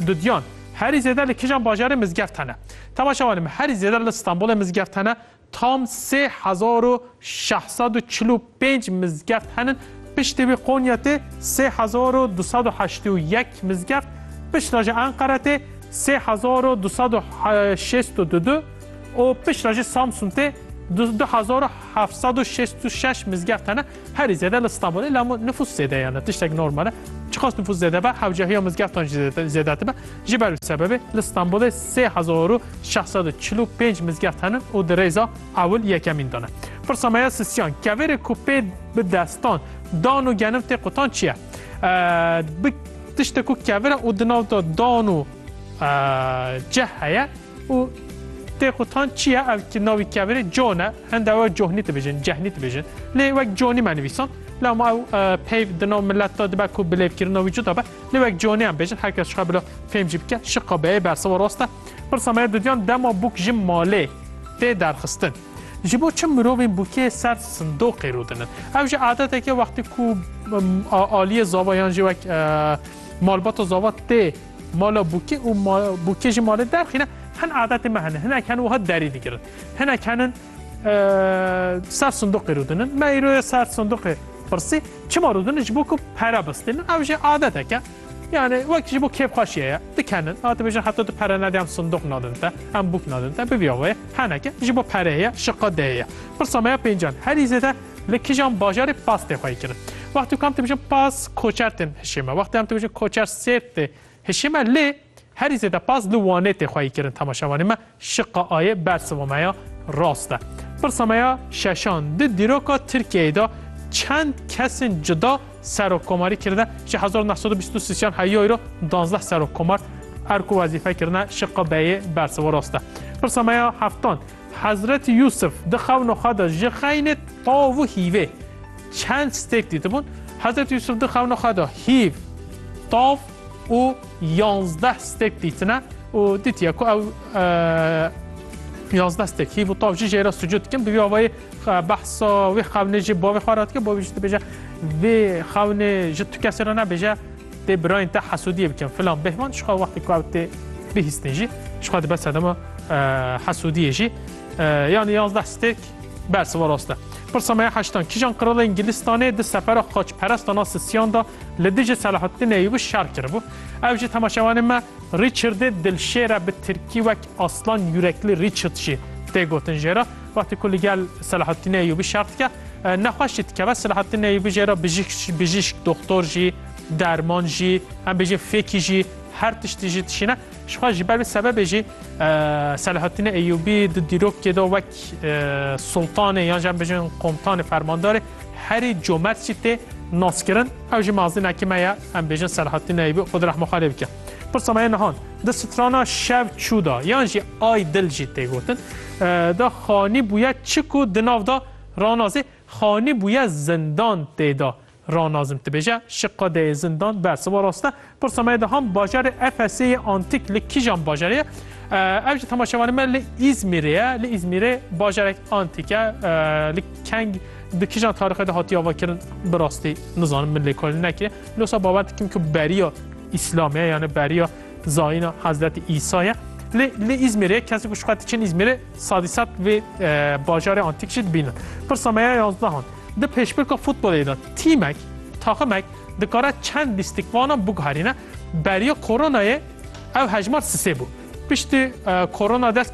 Dudyan, Herî zêde li kijan bajarê mizgev tene? Temaşe wanê me herî zêde li Stenbolê mizgev tene. Tam sê hezar û şeş sed û çil û pênc mizgev henin. Piştî wî Konya tê sê hezar û du sed û heştê û yek mizgev. Pişt re jî Enqere tê sê hezar û du sed û şêst û du û pişt re jî Samsun tê du hezar û heft sed û şêst û şeş mizgev tene. Herî zêde li Stenbolê la min nifûs zêde ye ne tiştek normal e. Çiqas nifûs zêde be hewcehiya mizgeftan jî zêde dibe. Ji ber wî sebebê li Stenbolê sê hezar û şeş sed û çil û pênc mizgeft hene û di rêza ewil yekemîn de ne. Pirsa me ya Sisyan, kevêrê ku pê bi destan dan û genim tê qutan çi ye? Bi tişte ku kevir e û di nav de dan û cih heye, Û tê qutan çi ye ev ki navî kevirê John e. Hende ew Cohnî dibêjin, Cehnî dibêjin. Lê wek Johnî me nivîsand. La ma ew peyv di nav milet de dibe ku bilêvkirina wî cuda be. Lê wek Johnî em bêjin her kes jixwe bila fêm jî bike. Şiqa beyê bersiva rast e. Pirsa me ye didiyan dema bûk ji malê tê derxistin. Ji bo çi mirovên bûkê ser sindoqê rûdinin? Ew jî adeteke wextî ku aliyê zava yan jî wek malbata zava tê Mala bûkê û bûkê ji malê derxîne hin adetê me hene. Hinek hen wiha derî digirin. Hinek henin ser sindoqê rûdinin. Me îro ye ser sindoqê pirsî çima rûdinin ji bo ku pere bistînin. Ew jî adeteke. Yani wek ji bo kêfxweşiye ye. Dikenin. A dibêjin heta tu pere nedî em sindoq nadin te, em bûk nadin te. Bibiya wê. Heneke ji bo perê ye, şiqa dê ye. Pirsa me ya pêncan. Herî zêde Li kîjan bajarê pas tê xweyî kirin? Wextê ku em tê bijin pas koçer tên hişê me. Wextê em tê bijin koçer sêrt tê hişê me. Lê herî zêde pas li Wanê tê xweyî kirin temaşevanê me. Şiqa A yê bersiva me ya rast e. Pirsa me ya şeşan di dîroka Tirkiyeyê de çend kesên cuda serokkomarî kirine? Ji hezar û neh sed û bîst û sîsyan heyayî re danzdeh serokkomar erk û wezîfe kirine. Şiqa B yê bersiva rast e. Pirsa me ya heftan. Hezretî Yûsif di xewno xwe de ji xeynê tav û hîvê çend stêk dîtibûn? Hezretî Yûsif di xewno xwe de hîv, tav û yanzdeh stêk dîtine û dîtiye ku ew yanzdeh stêk hîv û tav jî jê re sucûd dikin. Bi vî avayî behsa wê xewnê jî bavê xwe re dike, bavê jî dibêje vê xewnê ji tu kesê re nebêje. Tê birayên te hesûdiyê bikin filan bêhman jixwe wextê ku ew tê bihîstin jî jixwe dibe sedema hesûdiyê jî yanî yazdeh stêk bersiva rast e. Pirsa me ya heştan kîjan qirala Îngilistanê di sefera xaçperestan a Sisiyan da li dijî Selahaddin Eyyûbî şer kiribû. Ew jî temaşevanê me Rîçirdê dilşêr e bi tirkî wek Aslan Yürekli Richard jî tê gotin jê re. Wextê ku li gel Selahattîn Eyûbî şer dike, nexweş jî dikeve. Selahattîn Eyûbî jê re bijîşk, doxtor jî, derman jî, em bêjin fêkî jî, her tiştî jî dişîne. Ji xwe ji ber vê sebebê jî Selahattîn Eyûbî di dîrokê de wek sultanê yan jî em bêjin komtanê fermandarê herî comert jî tê naskirin. Ew jî mazînekî me ye. Em bêjin Selahattîn Eyûbî xwe di rehma xwe lê bike. Pirsa me nihan di strana şev çû da yan jî ay dil jî tê gotin da xanî bûye çi ku di nav da ranazê xanî bûye zindan tê da ranazim dibêje şi qadeyê zindan bersiva raste pirsa me de ham bajarê Efesê antîk li kîjan bajarê ev jî temaşevanê me li Îzmîrê ye li Îzmîrê bajarek antîk e li keng di kîjan tarixê de hatiye avakirin bi rastî nizanim min lêkolîn nekiriye losa bawer dikim ku beriya İslam ya yani beriya zayina Hazreti İsa ya. Li, li İzmir'e kesi ku şuxet için İzmir'e sadisat ve e, bajarê antik jî dibînin. Pirsa me ya yazdahan. Di pêşbirka futbolê de tîmek, taximek dikare çend lîstikvanan biguherîne. Beriya koronayê ev hejmar sisê bû. Piştî e, korona dest